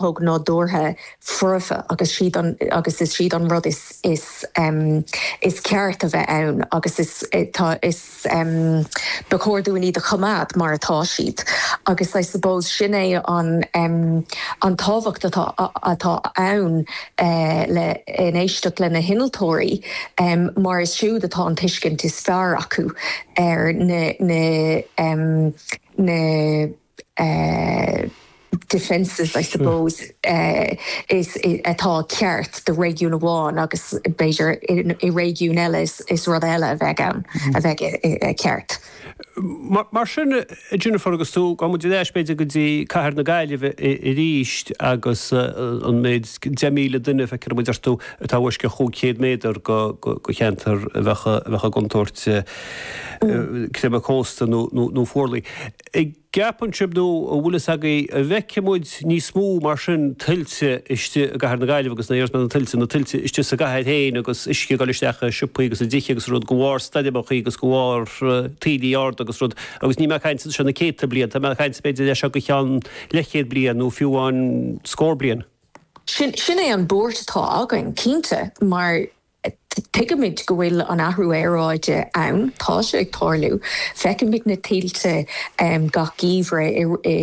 thóg nádúrtha foirfe agus siad agus is siad an rud is is is ceart a bheith ann agus is tá is ba chóir dúinn iad a choimeád mar atá siad agus I suppose sin é an an tábhacht atá atá ann le in éisteacht le na hinnealtóirí mar is siúd atá an tuiscint is fearr acu ar na na na. defences I suppose atá ceart do réigiún amháin agus b'fhéidir i réigiún eile is rud eile a bheidh ann a bheidh ceart. Mar sin a Jennifer, agus má théann muid ar ais b'fhéidir go dtí cathair na Gaillimhe arís agus an méid 10,000 duine, feicfidh muid ar thú, atá i bhfoisceacht cúig chéad méadar do cheantar a bheadh i gcontúirt creimeadh cósta nó fuarlaigh. An gceapann sibh, nó an bhfuil a fhios agaibh, an bhfeicfidh muid níos mó mar sin tuilte istigh i gcathair na Gaillimhe agus na h-iarsmaí de na tuilte, na tuilte istigh sa gcathair féin agus uisce ag dul isteach i siopaí agus i dtithe agus rud de bharr stoirmeachaí agus de bharr taoillí arda agus rud agus níl mé ag caint as seo na céadta bliain, tá mé ag caint b'fhéidir as seo go ceann leathchéad bliain nó fiú amháin scór bliain. Sin, sin é an buairt atá againn, cinnte, mar Tuigimid go bhfuil an athrú aeráide ann, tá sé ag tarlú, feicimid na tuilte gach geimhreadh i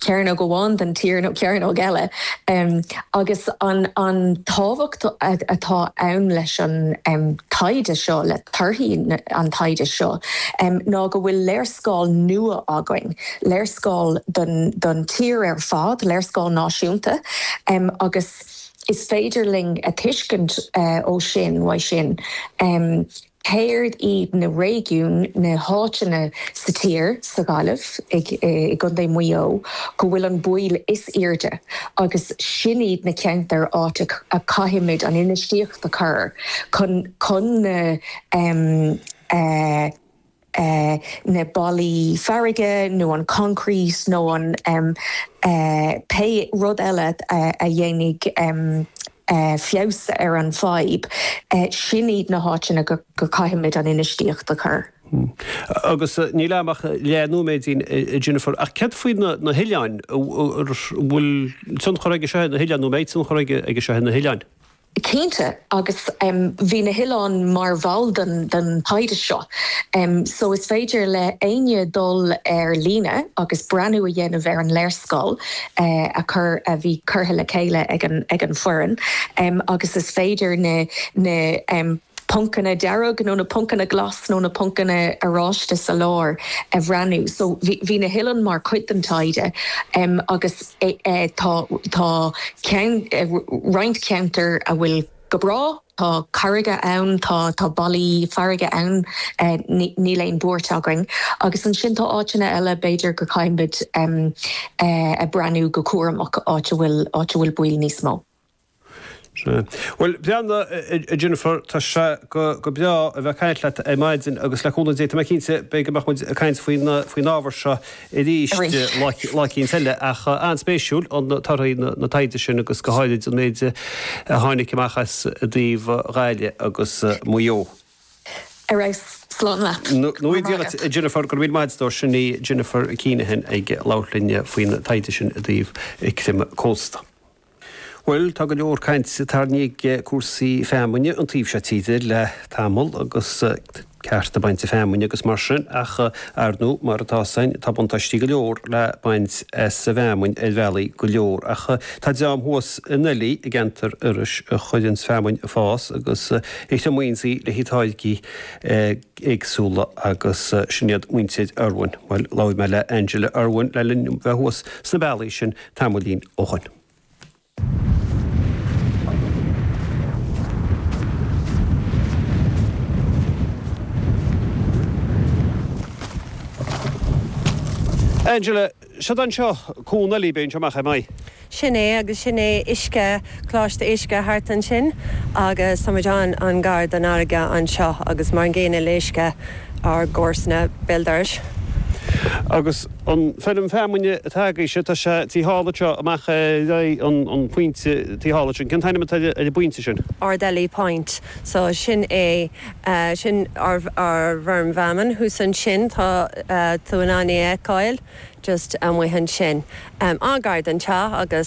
gcearnóg amháin den tír nó cearnóg eile agus an tábhacht atá ann leis an taighde seo, le torthaí an taighde seo, ná go bhfuil léarscáil nua againn, léarscáil don tír ar fad, léarscáil náisiúnta agus. Is féidir linn a thuiscint ó sin, uaidh sin, céard iad na réigiúin, na háiteanna sa tír, sa Ghaillimh, i gContae Mhaigh Eo, go bhfuil an baol is airde agus sin iad na ceantair áit a caithfimid an infheistíocht a chur chun na na ballaí farraige nó an concrete nó an pé rud eile a dhéanfaidh feabhas ar an bhfadhb, sin iad na háiteanna go caithfimid an infheistíocht a chur. Agus níl agam ach leath nóiméidín, a Jennifer, ach céard faoi na hoileáin? An bhfuil tionchar aige seo ar na hoileáin nó an mbeidh tionchar aige seo ar na hoileáin? Cinnte, agus bhí na hoileáin mar bhall den taighde seo so is féidir le éinne dul ar líne agus breathnú a dhéanamh ar an léarscáil a chur, a bhí curtha le chéile ag an foireann agus is féidir na poncanna dearg nó na poncanna glas nó na poncanna oráiste sa lár a bhreathnú. So bhí na hoileáin mar chuid den taighde agus tá roinnt ceantar a bhfuil go breá, tá carraige ann, tá ballaí farraige ann, níl aon buairt againn agus ansin tá áiteanna eile b'fhéidir go caithfimid breathnú go cúramach, áit a bhfuil baoil níos mó. Sea. Bhuel, beannacht, a Jennifer, tá sé go breá a bheith ag caint leat ar maidin agus le cúnamh Dé, tá mé cinnte, beidh, go mbeidh muid ag caint faoin ábhar seo arís lá eicínt eile. Ach an-spéisiúil torthaí na taighde sin agus go háirithe an méid a tháinig amach as i dtaobh Ghaillimh agus Maigh Eo. Ar ais slán leat. Go raibh maith agat. Nuair a dhéanfaidh, a Jennifer, go raibh míle maith agat, a stór. Sin í Jennifer Keenahan ag labhairt linn faoin taighde sin i dtaobh creimeadh cósta. Bhuel, tá go leor cainte tarraingthe ag cúrsaí feamainne an taobh seo tíre le tamall agus cearta bainte feamainne agus mar sin ach, ar ndóigh, mar atá's a'inn, tá buntáistí go leor le baint as an bhfeamainn ar bhealaí go leor ach tá dream thuas in Oilí i gceantar Iorrais a chuireanns feamainn a' fás agus a thriomaíonns í le haghaidh táirgí éagsúla agus sin iad muintir Irwin. Bhuel, labhair mé le Angela Irwin le linn dom bheith thuas sna bealaí sin tamaillín ó shoin. Angela, siud anseo, Cuan Oilí, beidh an seo amach, am I? Sin é, agus sin é uisce, Coláiste uisce thart ansin agus tá muid an, an gar don fharraige anseo agus mar an gcéanna le uisce ár gcomharsana, Béal Dorais. Agus. An feirm feamainne atá agaibhse, tá sé taobh thall anseo, amach ar aghaidh an phointe taobh thall ansin. Cén t-ainm atá ar an bpointe sin? Ardely Point. So, sin é, sin ár bhfeirm feamainn thuas ansin, tá tú in ann é a fheiceáil just amuigh ansin, an-ghar don teach agus.